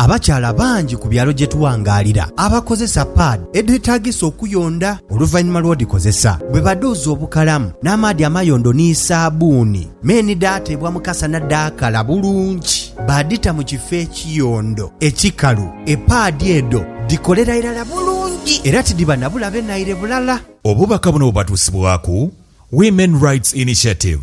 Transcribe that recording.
Abakyala bangi ku byalo gye tuwangaalira abakozesa paadi edhetaagisa okuyonda oluvannyuma lw'odhikozesa bwe badhuuza obukalamu n'amaadhi amayondo ni saabbuuni. Me ni dhaateebwa mu kasana dhaakala bulungi baadhita mu kifo ekiyondo ekikalu. Epaadi edho dhikolera irala bulungi era tidhiba na bulabe naire bulala. Obubaka buno bubatuusibwaku Women Rights Initiative.